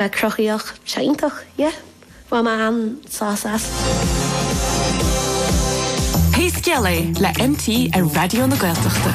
Bheith cruthaíoch, sé iontach, yeah. Bhain mé an-sás as. Pé Scéal É le MT ar Raidió na Gaeltachta.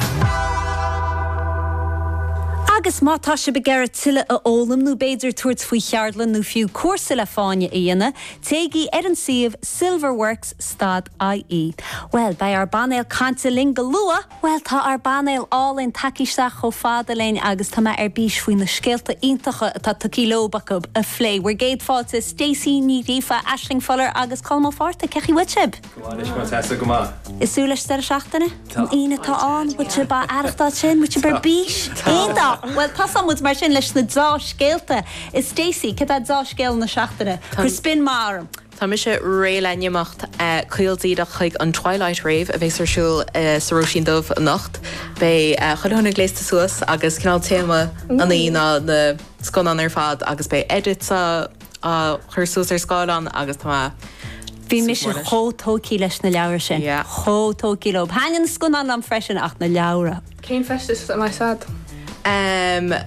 Agus má tá sibh ag iarraidh tuilleadh a fhoghlaim nó b'fhéidir tabhairt faoi cheardlann nó fiú cúrsa le fáinne a dhéanamh, téigí ar an suíomh silverworks dot IE. Bhuel, beidh ár bpainéal cainte linn go luath! Bhuel, tá ár bpainéal álainn tagtha isteach chomh fada linn agus tá mé ar bís faoi na scéalta iontacha atá tugtha leob acu a phlé. Bhur gcéad fáilte, Stacey Ní Ghríofa, Aisling Fuller agus Colm Ó Fátharta, cé chaoi bhfuil sibh? Go maith anois Máire Treasa, go maith. Ag súil leis an deireadh seachtaine? Tá. An Aoine atá ann, bhfuil sibh á aireachtáil sin? Bhfuil sibh ar bís? Tá. Iontach! Bhuel, tosóidh muid mar sin leis na deá-scéalta. Stacey, céard é deá-scéal na seachtaine? Cuir spin maith orm! Tá mise réidh le n-imeacht caol díreach chuig an Twilight Rave a bheas ar siúl sa Róisín Dubh anocht. Beidh chuile dhuine gléasta suas agus cineál téama na hoíche ná na scannáin ar fad agus beidh edits á chur suas ar scáileán agus tá mé ag súil go mór leis. Bhí mise chomh tógtha leis na leabhra sin. Yeah. Chomh tógtha leob. Thaitnigh na scannáin liom freisin ach na leabhra. Cén feisteas a bheas agat?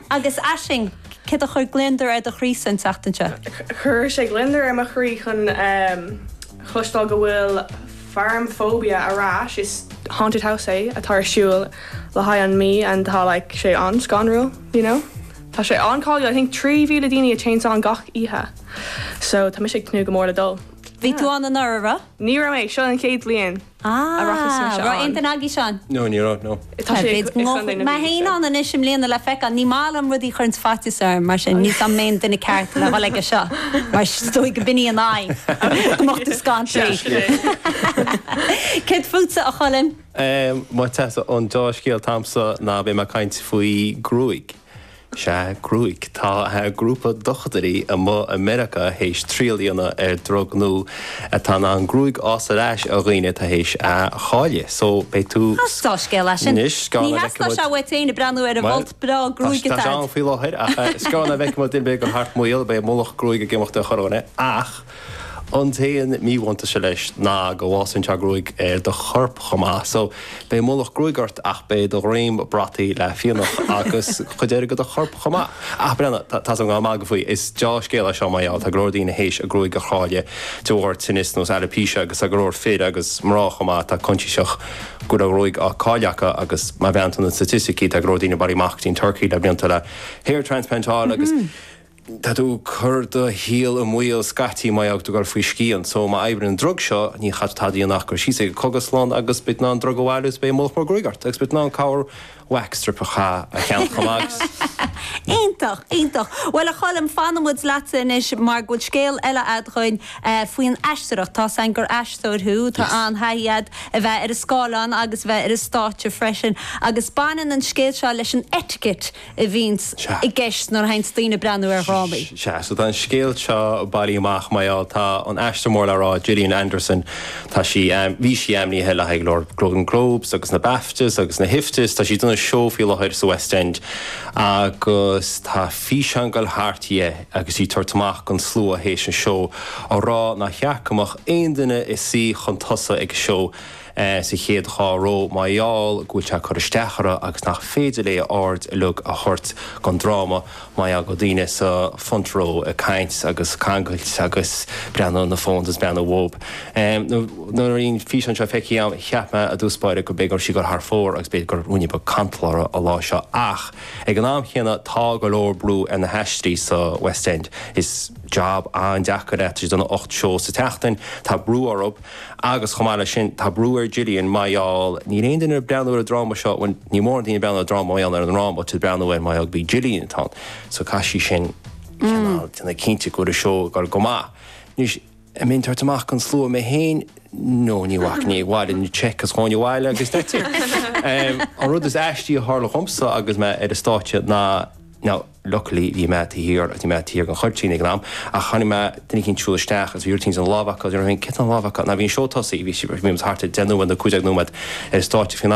Agus aisling, céard a chuir gliondar ar do chroí an tseachtain seo? Chuir sé gliondar ar mo chroí chun cloisteáil go bhfuil Farmaphobia ar ais, is haunted house é atá ar siúl i gContae na Mí and tá like sé an-scanrúil, you know. Tá sé an-cháiliúil, I think 3,000 daoine attends gach oíche, so tá mise ag tnúth go mór le dul. Bhí tú ann anuraidh, an raibh? Ní raibh mé, seo an chéad bhliain. a raibh fios agam faoi seo. An raibh aon duine agaibh ann? No, ní raibh, no. Tá sé ag Tá mé féin ann anois i mbliana le feiceáil. Ní maith liom rudaí a chuireanns faitíos orm, mar sin ní fios an mé an duine ceart le dhul aige seo, mar is dóigh go b'in í an aidhm, go mbeadh tú scanraithe. Céard fútsa, a Choilm? An deá-scéal atá agamsa ná beidh mé ag caint faoi ghruaig. Sea, gruaig. Tá grúpa dochtúirí amuigh i Meiriceá théis triail a dhéanamh ar drug nua atá in ann gruaig a fhás ar ais ar dhaoine atá théis í a chailleadh. So, beidh tú. Deá-scéal é sin. Anois, ní theastódh sé uait féin ag breathnú ar an bhfolt breá gruaige atá ort. Bhuel, tá, tá sé ann faoi láthair, ach is gearr anois go bhfeicfidh muid duine ag goil thart maol, beidh mullach gruaig ag imeacht ar chorrdhuine, ach. An t-aon míbhuntaiste leis ná go bhfásann sé gruaig ar do chorp chomh maith. So, beidh mullach gruaig ort ach beidh do dhroim brataithe le fionnadh agus cuid eile go do chorp chomh maith. Ah, breathnaigh, tá's agam go bhfuil mé ag magadh faoi. Is deá-scéal é seo mar gheall, tá go leor daoine théis a gruaig a chailleadh de bharr tinnis nós alopecia agus tá go leor fir agus mná chomh maith atá coinsiasach go bhfuil a gcuid gruaig á cailleadh acu agus má bhreathnaíonn tú ar na staitisticí tá go leor daoine ag bailiú amach go dtí an Turkey le blianta le hair transplant a fháil agus Tá tú ag cur do shaol i mbaol scaití má tá tú ag goil faoi scian so má oibríonn an drug seo ní chaithfidh tú tada a dhéanamh ach goil síos ag an gcógaslann agus beidh tú in ann an drug a bhailiú agus beidh mullach mór gruaige ort agus beidh tú in ann corr wax strip a cheannach chomh maith agus. Iontach, iontach. Bhuel, a Choilm, fanfaidh muid leatsa anois mar go bhfuil scéal eile agat dhuinn faoin aisteoireacht. Tá a fhios againn gur aisteoir thú, tá an-taithí agat a bheith ar an scáileán agus a bheith ar an stáitse freisin agus baineann an scéal seo leis an etiquette, a bhíonns i gceist nuair a théanns daoine ag breathnú ar dhrámaí. Sea, so tá an scéal seo bailithe amach, mar gheall, tá an aisteoir mór le rá, Gillian Anderson, tá sí, bhí sí ainmnithe le haghaidh go leor Golden Globes agus na Baftas agus na hIFTAs, tá sí ag déanamh seó faoi láthair sa West End agus tá físeán ag goil thart dhi agus í ag tabhairt amach dhon slua th'éis an seó, a rá nár cheart go mbeadh aon duine ag suí chun tosaigh ag an seó. sa chéad dhá ró, mar gheall go bhfuil sé ag cur isteach uirthi agus nach féidir léi a aird uilig a thabhairt don dráma mar gheall go bhfuil daoine sa front row ag caint agus ag cangailt agus ag breathnú ar na phones is ag breathnú uathub. Nuair a bhí an físeán seo feicthe agam, cheap mé i dtús báire go raibh sí ag goil thar fóir agus b'fhéidir go raibh ruainne beag cantail uirthi an lá seo ach ag an am chéanna tá go leor brú ar na haisteoirí sa West End. Is job an-deacair é, tá siad ag déanamh ocht seó sa tseachtain, tá brú orthu, Agus chomh maith leis sin, tá brú ar Gillian, mar gheall, níl aon duine ag breathnú ar an dráma seo, bhuel, níl mórán daoine ag breathnú ar an dráma mar gheall ar an dráma, tá siad ag breathnú air mar gheall gurb í Gillian atá ann. So caithfidh sí sin cineál déanamh cinnte go bhfuil an seó ag dul go maith. Anois, an mbeinn ag tabhairt amach dhon slua, mé féin, no, ní bhacfainn, bhaileoinn an cheque is ghabhfainn abhaile agus that's it. An rud is aistí a tharla dhomsa agus mé ar an stáitse ná, now, Luckily bhí mé taobh thiar agus bhí mé taobh thiar dhon chuirtín ag an am ach chonaic mé duine eicínt ag siúl isteach agus bhí rud eicínt sa lámh acu agus nuair a chonaic mé céard a bhí sa lámh acu, now, bhí an seó tosaithe bhí sí bhí muid thart ar 10 nóiméad nó 15 nóiméad ar an stáitse faoin am sin.